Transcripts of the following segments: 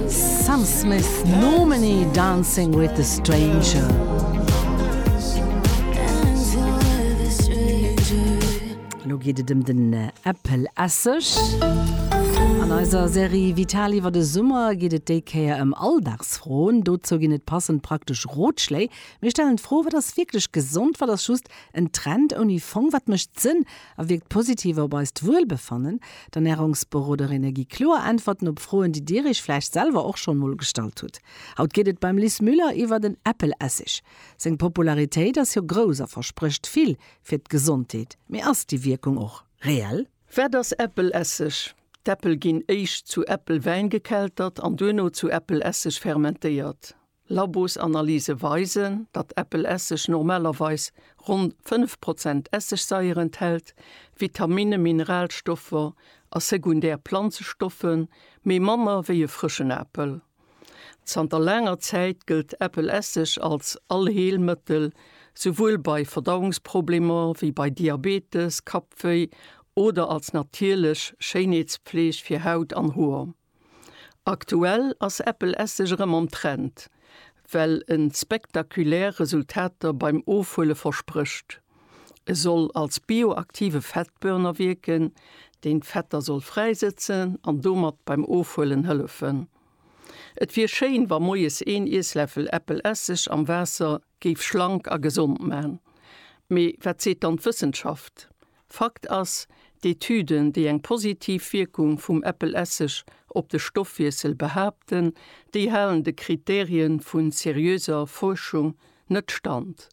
Sam Smith, Nomine, Dancing with a Stranger. Lo geet et ëm den Äppelesseg. An eiser Serie Vital iwwer de Summer geet et déi Kéier ëm Alldagsfroen. Dozou ginn et passend praktesch Rotschléi. Mir stellen d'Fro, Wat ass wierklech gesond? Wat ass just en Trend ouni Fong? Wat mécht Sënn? a wierkt positiv op eist Wuelbefannen. D'Ernärungsberoderinne gi kloer Äntwerten op Froen, déi Dir Iech vläicht selwer och schonn emol gestallt hutt. Haut geet et beim Lis Müller iwwer den Äppelessig. Seng Popularitéit ass jo grouss a versprécht vill fir d'Gesondheet. Mee ass déi Wierkung och reell? Wat ass Äppelessig? D'Äppel ginn éischt zu Äppelwäin gekeltert an duerno zu Äppelessig fermentéiert. Labosanalyse weisen, datt Äppelesseg normalerweis ronn 5 Prozent Essigsaier enthält, Vitaminne, Mineralstoffer a sekundär Planzestoffe méi manner wéi e frëschen Apel. Zanter laanger Zäit gëllt Äppelesseg als Allheelmëttel, souwuel bei Verdauungsproblemer wéi bei Diabetes, Kappwéi oder als natierlech Schéinheetspfleeg fir Haut an Hoer. Aktuell ass Apple Esseg erëm am Trend, well en spektakulär Resultater beim Ofhuele versprécht. E soll als bioaktive Fettburner wierken, deen d'Fetter soll fräisëtzen an domat beim Ofhuelen hëllefen. Et wier schéin, wa moies een Iessläffel Apple Esseg am Waasser Géif schlank a gesond man. Mee wat seet dann d'Wëssenschaft? Fakt ass, d'Etüden, déi eng positiv Wierkung vum Äppelesseg op de Stoffwiessel behaapten, déi halen de Kriterien vu seriöser Fuerschung net stand.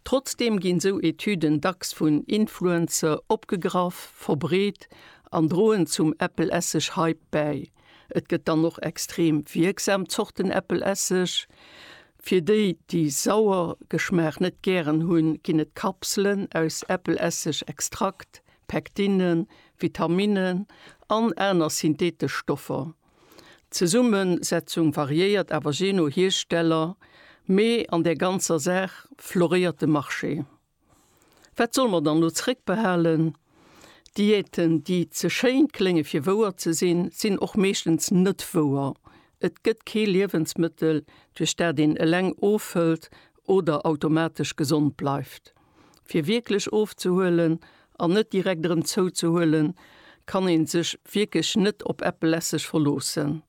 Trotzdeem ginn sou Etüden dacks vun Influencer opgegraff, verbreet an droen zum Äppelesseg-Hype bäi. Et gëtt dann och extrem wierksam Zorten Äppelesseg, Fir déi, déi sauer Geschmaach net gären hunn, ginn et Kapselen aus Äppelesseg, Extrakt, Pektinnen, Vitaminnen an aner synthetesch Stoffer. D'Zesummesetzung variéiert awer jee no Hiersteller, mee an der ganzer Saach floréiert de Marché. Wat solle mer dann elo zeréckbehalen? Diäten, déi ze schéin klénge fir wouer ze sinn, sinn och meeschtens net wouer. Et gëtt kee Liewensmëttel, duerch dat een eleng ofhëlt oder automatesch gesond bleift. Fir wierklech ofzehuelen an net direkt erëm zouzehuelen, kann ee sech wierklech net op eppelesseg verloossen.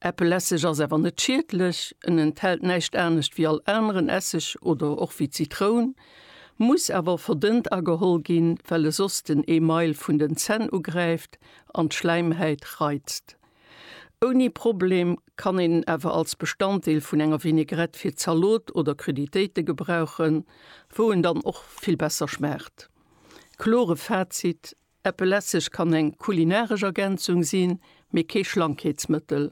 Äppelesseg ass awer net schiedlech, en enthält näischt anescht wéi all aneren Esseg oder och wéi Zitroun, muss awer verdënnt ageholl ginn, well e soss den Email vun den Zänn ugräift an d'Schläimhäit reizt. Ouni Problem kann een en awer als Bestanddeel vun enger Vinägrette fir Zalot oder Cruditéite gebrauchen, wou en dann och vill besser schmaacht. Klore Fazit, Äppel Esseg kann eng kulinaresch Ergänzung sinn, mee kee Schlankheetsmëttel.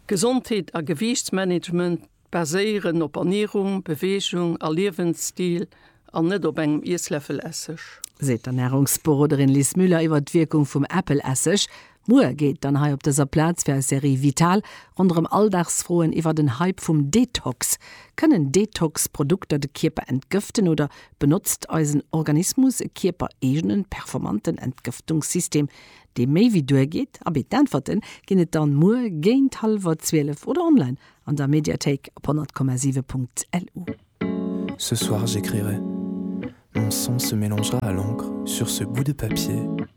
Gesondheet a Gewiichtsmanagement baséieren op Ernierung, Beweegung a Liewensstil an net op engem Iessläffel Esseg. Seet d'Ernärungsberoderin Liz Müller iwwer d'Wierkung vum Äppel Esseg, Muer geet et dann hei op dëser Plaz fir eis Serie Vital ronderëm Alldagsfroen iwwer den Hype vum Detox. Kënnen Detox-Produkter de Kierper entgëften oder benotzt eisen Organismus e kierpereegenen, performanten Entgëftungssystem, dee méi wéi duergeet? Abee, d'Äntwerte ginn et dann muer géint hallwer 12 oder online an der Mediathéik op 100,7.lu. Ce soir j'écrirai Mon sang se mélangera à l'encre sur ce bout de papier.